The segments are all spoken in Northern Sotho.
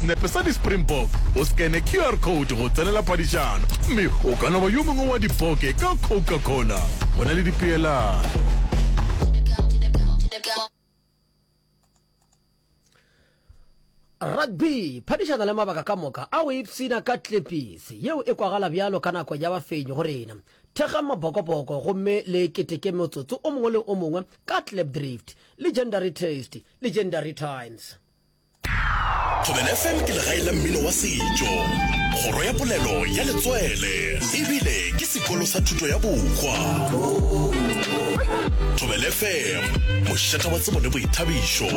Senepe sa di-Springbok, o scanne QR code go tsenela phadišano, mme o ka no ba yo mongwe wa dipoke ka Coca-Cola. Go na le dipeelano. Rugby, phadišana le mabaka ka moka a go ipshina ka tlepisi yeo e kwagala bjalo ka nako ya bafenyi go rena. Thekgang mabokoboko gomme le keteke motsotso o mongwe le o mongwe ka Klipdrift, Legendary Taste, Legendary Times. Thobela FM ke legae la mmino wa setšo, kgoro ya polelo ya letswele ebile ke sekolo sa thuto ya bokgwa. Thobela FM, mošata wa tsebo le boithabišo.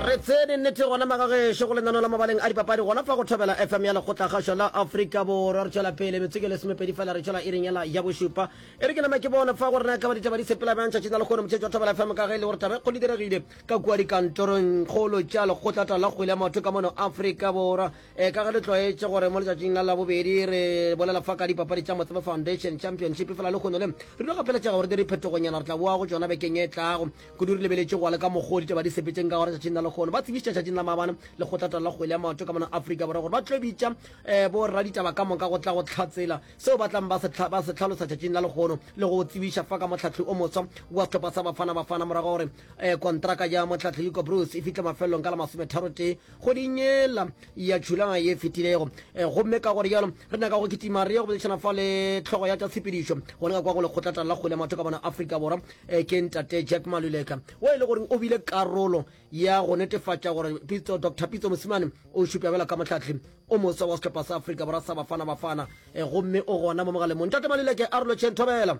re tsene nnete gona magagešo go lenano la mabaleng a dipapadi gona fa go thobela fm ya lekgotlakgašo la afrika borwa re tšwela pele metseke le semepedi fela re tšwela e reng ela ya bošupa E re ke nama ke bona fa gore na ekaba ditaba di sepela bjang tšatši la lekgono motšhetši wa Thobela FM ka ge e le gore taba e kgolo e diregile ka kua dikantorongkgolo tša lekgotlata la kgwele ya maoto ka mono Afrika Borwa. E ka ge le tlwaetše gore mo letšatšing la labobedi re bolela fa ka dipapadi tša Motsebe Foundation Championship efela lekgono le re no gapeletšega gore di re phetogonyana re tla boa go tšona bekeng e tlago. Kudu re lebeletše go le ka mokgwa o ditaba di sepetšeng ka gona tšatšing la lekgono ba tsebišitše tšatšing la maabane lekgotlata la kgwele ya maoto ka mono Afrika Borwa gore ba tlo bitša borraditaba ka moka go tla go hlatsela seo ba tlang ba se tlha- ba se tlhalosa tšatšing la legono le go tsebiša fa ka mohlahli o moswa wa sehlopha sa bafana bafana morago gore um kontraka ya mohlahli hugo bruce e fihle mafelelong ka la masometharotee kgweding yela ya tšhulana ye fetilego um gomme ka gore jalo re nyaka go kitima re ye go boledišana fa le tlhogo ya tša tshepedišo go leka kwa go lekgotlatala la kgwele ya matho ka bona afrika borwa um ke ntate jack maluleka wo e le goreng o bile karolo ya go netefatša gore pitso dr pitso mosimane o šupša bjalo ka mohlahli o moswa wa sehlopha sa afrika borwa sa bafana bafana e gomme o gona mo mogalemong tate malileke a relotšheng thobela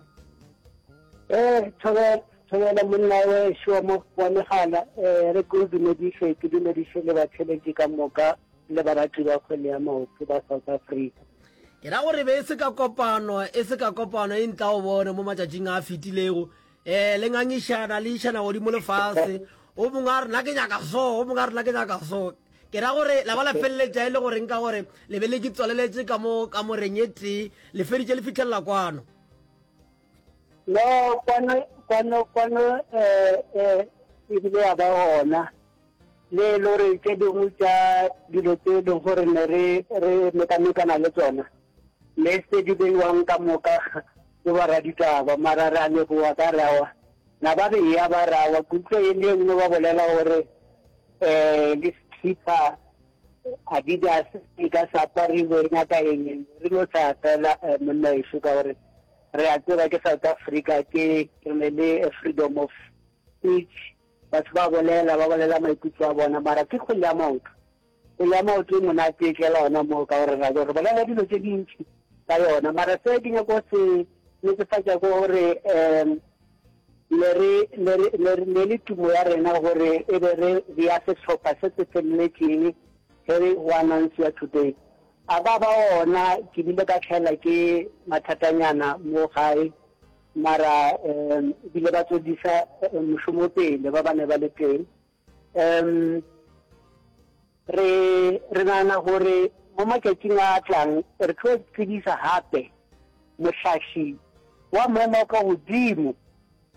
ee thobela thobela monna we šoa mo wa megala um eh, re ke o dumediše ke dumediše le batšheletši ka moka le barati ba kgwele ya maoto ba south africa ke ra gore be e se ka kopano e se ka kopano e ntla o bone mo matšatšing a fetilego Ee, le ngangišana, le išana godimo le fase. O mongwe a re, na ke nyaka so, o mongwe a re, na ke nyaka so. Ke ra gore la ba la feleletša e le goreng ka gore le be le ke tswaleletše ka mo ka moreng e tee le feditše le fitlhelela kwano no kwano kwano kwano um um ebile ya ba gona le e le gore tše dingwe tša dilo tse e leng gore ne re re mekamekana le tsona ne se di beiwang ka moka ke baraditaba mara re a leboa ka rawa na ba beya ba rawa kutlwa e le nngwe ba bolela gore um le sekhipha adidas e ka sa apariwe nyaka eng re no sa fela eh, monna eso ka gore re a tseba ke south africa ke re ne le freedom of speech Batho ba bolela, ba bolela maikutlo a bona, mara ke kgwele ya maoto. Kgwele ya maoto e monate e tlela ona moo ka gore ra gore bolela dilo tse dintši ka yona. Mara se ke nyako se netefatša ko gore um le re le re le re le le tumo ya rena gore e be re re ya sehlopha se se feleletšeng ge re go announce ya today. A ba ba ona ke bile ka tlhaela ke mathatanyana mo gae. mara um ebile ba tswedisa eh, mošomo pele ba ba ne ba le teng um re re nana gore mo matšatšing a tlang re tlo tsebisa gape mohlaši wa maemo ka godimo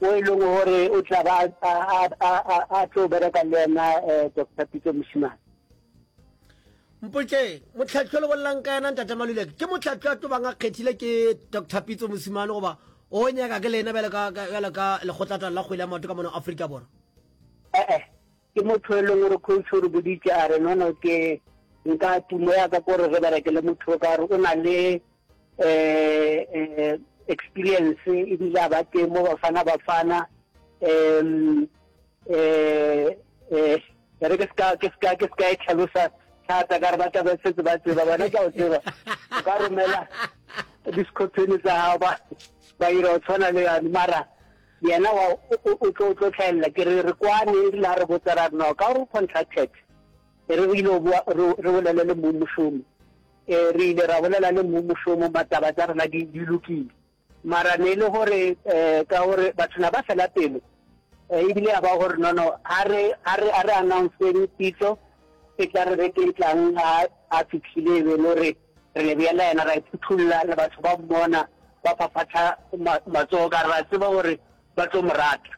o e leng gore o tla ba a tlo bereka le ena um eh, dr pitso mosimane Mpotšeng, Mohlahli o le bollang ka yena Ntate Maluleke ke mohlahli a tobang a kgethile ke Doctor Pitso Mosimane goba o nyaka ke lena bjalo ka bjalo ka lekgotlatala la kgwele ya maoto ka mono Afrika Borwa? Ee, ke motho e leng gore coach o re boditše a re nono ke nka tumo ya ka ko re re berekele motho o ka re o na le eh experience e bile a ba teng mo bafana bafana um eh eh re ke ska ke ska ke ska e tlhalosa thata ka re ba tla ba setse ba tseba bona ka o tseba o ka romela discotheni tsa gago ba ba ira o tshwana le yane mara yena wa o tlo tlo tlhaelela ke re re kwane e rile a re botsa ra rena ka gore o contracted e re re ile re bolele le mmušomo Ee, re ile ra bolela le mmu mošomo, mataba tša rena di, di lokile. Mara ne e le gore um ka gore batho na ba fela pelo, um ebile ya ba gore nono a re, a re, a re announceng pitso e tla re beke e tlang. A, a fihlile e be e le gore re le bea la yena, ra e phuthulla, le batho ba mmona ba phaphatha ma, matsogo, ka re ra tseba gore ba tlo mo rata.